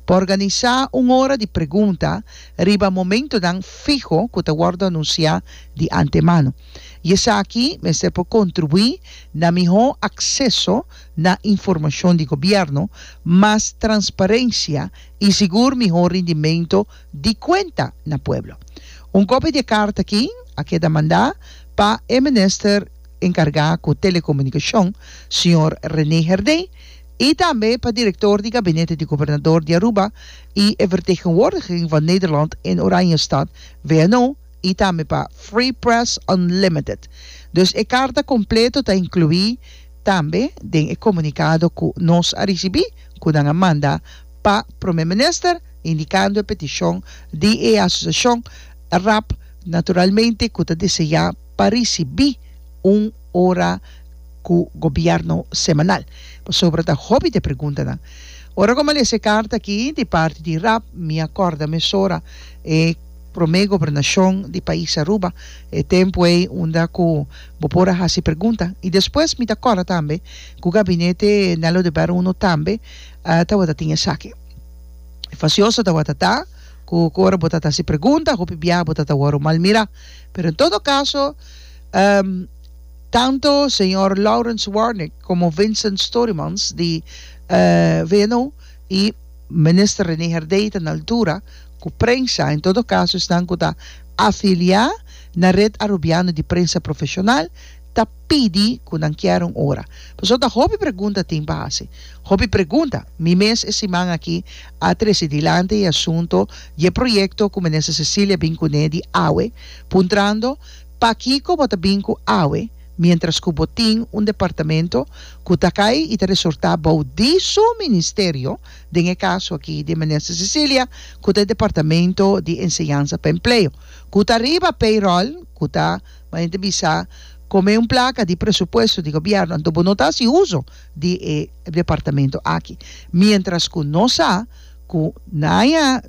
Pa organisá un ora di pregunta riba momentonan fiho ku ta wòrdu anunsiá di antemano. I esaki mester por kontribuí na mihó akseso na informashon di gobièrnu, mas transparensia i sigur mihó rindimentu di kuenta na pueblo. Un kopia di e karta aki a keda mandá pa e minister enkargá ku telekomunikashon, señor René Herdé, i tambe pa direktor di gabinete di gobernador di Aruba i e vertegenwoordiging van Nederland in Oranjestad, VNO, i tambe pa Free Press Unlimited. Dus e karta kompleto ta inkluí tambe den e komunikado ku nos a risibí ku nan a manda pa Prome Minister indikando e petishon di e asosiashon rap naturalmente ku ta deseá pa risibí un ora ku gobièrnu semanal. Pasobra ta hopi di e preguntanan. Ora ku mi a lesa e karta akí di parti di rap mi a kòrda mesora e promé gobernashon di pais Aruba, e tempu ei unda ku bo por a hasi pregunta. I despues mi ta kòrda tambe ku gabinete Nello de Berro Uno tambe tabata tin esaki. Fasioso tabata ta ku ora bo ta hasi pregunta hopi biaha bo ta wòrdu malmirá. Pero en todo caso, ehm, tanto señor Lawrence Warnick como Vincent Storymans di, eh, VNO y Minister René Herdey ta na altura cu prensa, en todo caso esnan cu ta afilia na Red Arubiano di Prensa Profesional ta pidi cu nan kier un ora. Pasobra ta hopi pregunta tin pa haci. Hopi pregunta. Mi mes e siman aki a trece dilanti e asunto di e proyecto cu Minister Cecilia bin cune di awe, puntrando, Pakico bo ta bin cu awe, mientras cu bo tin un departamento cu ta cay y ta resorta bao di su Ministerio, den e caso aki di Minister Cecilia cu ta e Departamento di Enseñanza pa Empleo, cu ta riba payroll, cu ta, manera ta bisa, come un placa di presupuesto di Gobierno, anto bo no ta haci uzo di e departamento aki, mientras cu nos sa cu na aña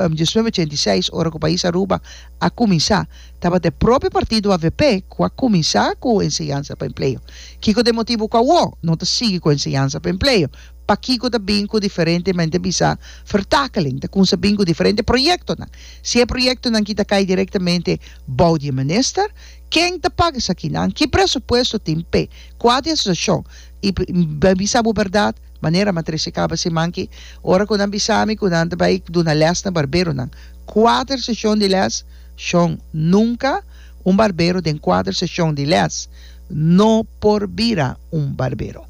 diecinueve ochenta y seis ora cu Pais Aruba a cuminsa tabatin e propio partido avp cu a cuminsa cu enseñansa pa empleo. Kico ta e motibo cu awo no ta sigui cu enseñansa pa empleo? Pakico ta bin cu diferentemente a bisa vertakeling? Ta cunsa bin cu diferente proyectonan? Si e proyectonan ki ta cay directamente bou di e minister, Ken ta paga esakinan? Ki presupuesto tin p'e kua di asosiashon? I bai bisa bo bèrdat, manera m'a trese kaba siman aki, ora ku nan bisa mi ku nan ta bai duna lès na barberonan. Kuater seshon di lès? Shon, Nunka un barbero den kuater seshon di lès no por bira un barbero.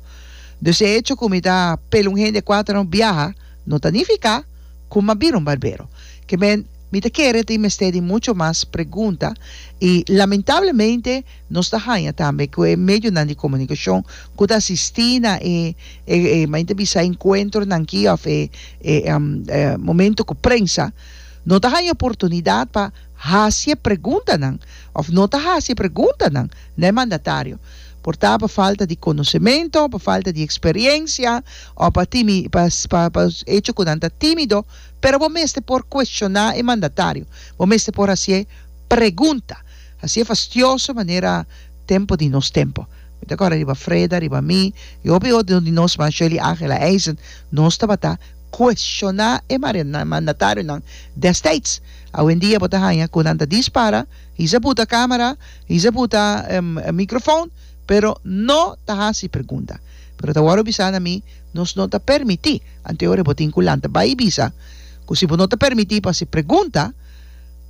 Dus e echo ku mi ta pela un hende kuater no biaha no ta nifiká ku m'a bira un barbero. Ke men. Mi ta kere tin mester di mucho mas pregunta y lamentablemente nos ta haña tambe cu e medionan di comunicacion cu ta asisti na e e men ta bisa encuentronan aki of e e momento cu prensa no ta haña oportunidad pa haci e preguntanan of no ta haci e preguntanan na e mandatario por ta pa falta di conocemento, pa falta di experiencia o pa timi pa pa hecho cu nan ta timido. Pero bo mester por cuestioná e mandatario. Bo mester por hacié pregunta. Hacié fastioso manera tempo di nos tempo. Mi ta corda riba Freda, riba mi y hopi otro di nos man, Shirley Angela Eisen, nos tabata cuestioná e mandatarionan desteits. Awendia bo ta haña cu nan ta dispara, hiz'a buta camera, hiz'a buta microfoon, pero no ta haci pregunta. Pero ta wordo bisa na mi, Nos no ta permití. Anto ora bo tin ku lanta bai i bisa ku si bo no ta permití pa si pregunta,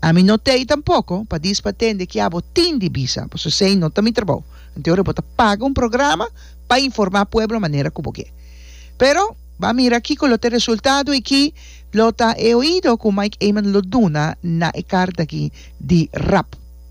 ami no t'ei tampoko pa dis pa tende kia bo tin di bisa, pasobra esei no ta mi trabou. Anto ora bo ta paga un programa pa informá pueblo manera ku bo ke. Pero ban mira kiko lo ta e resultado i ki lo ta e oido ku Mike Eman lo duna na e karta aki di rap.